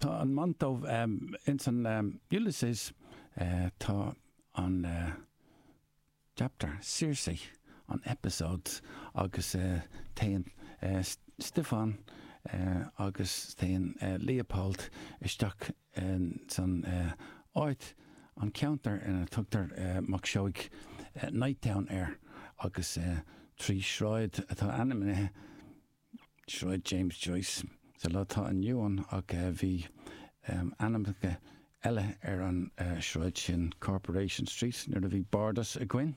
Tá an Monto ins an Ulysses tá an chapter Circe an episode agus téann Stiofán agus téann Leopold isteach in san áit, an ceantar ina dtugtar Mac Seoigh Nighttown air agus trí sráid atá ainmnithe Sráid James Joyce sa lá atá inniu ann ach bhí ainmneacha eile ar an sráid sin, Corporation Street nuair a bhí Bardas againn.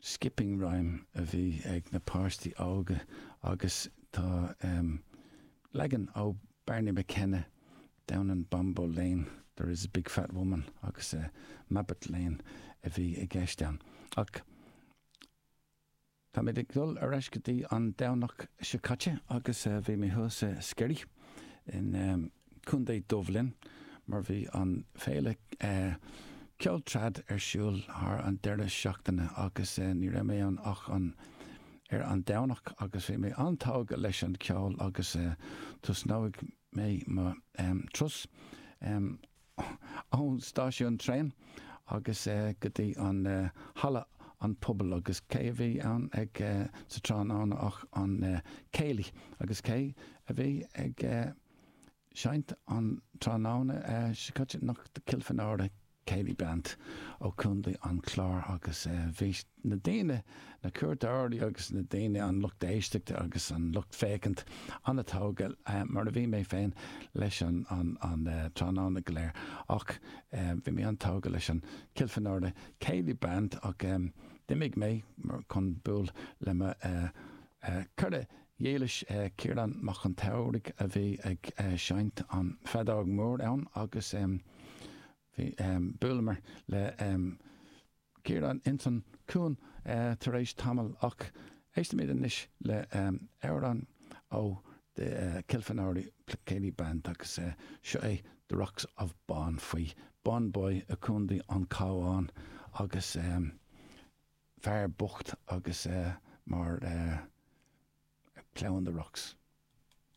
skipping rhyme a bhí ag na páistí óga agus tá leagan ó Barney McKenna, Down in Bombo Lane there is a big fat woman agus Mabbot Lane a bhí i gceist ann. Ach táimid ag dul ar ais go dtí an Domhnach seo caite agus bhí mé thuas i Sceirí in. Contae Dhubhlinn, mar bhí an féile ceoil trad ar siúl thar an deireadh seachtaine agus ní raibh mé ann ach an ar an Domhnach agus bhí mé an-tógtha leis an ceol agus tosnóidh mé mo turas ón stáisiún traen agus go dtí an halla an phobail agus cé a bhí ann ag sa tráthnóna ach an céilí agus cé a bhí ag seinnt an tráthnóna seo caite ach Kilfenora Céilí Band ó Contae an Chláir agus bhí na daoine, na cuairteoirí agus na daoine, an lucht éisteachta agus an lucht féachaint an-tógtha, mar a bhí mé féin, leis an tráthnóna go léir ach bhí mé an-tógtha leis an Kilfenora Céilí Band ach d'imigh mé chun buail le mo chara dhílis, Ciarán Mac an tSamhraidh a bhí ag seinnt an feadóg mór ann agus bhí buaileamar le Ciarán ins an cuan tar éis tamaill ach éistimid anois le amhrán ó The Kilfenora Céilí Band agus seo é The Rocks of Bawn faoi Bawnboy i gContae an Cabháin agus. fear bocht agus mar ploughing the rocks.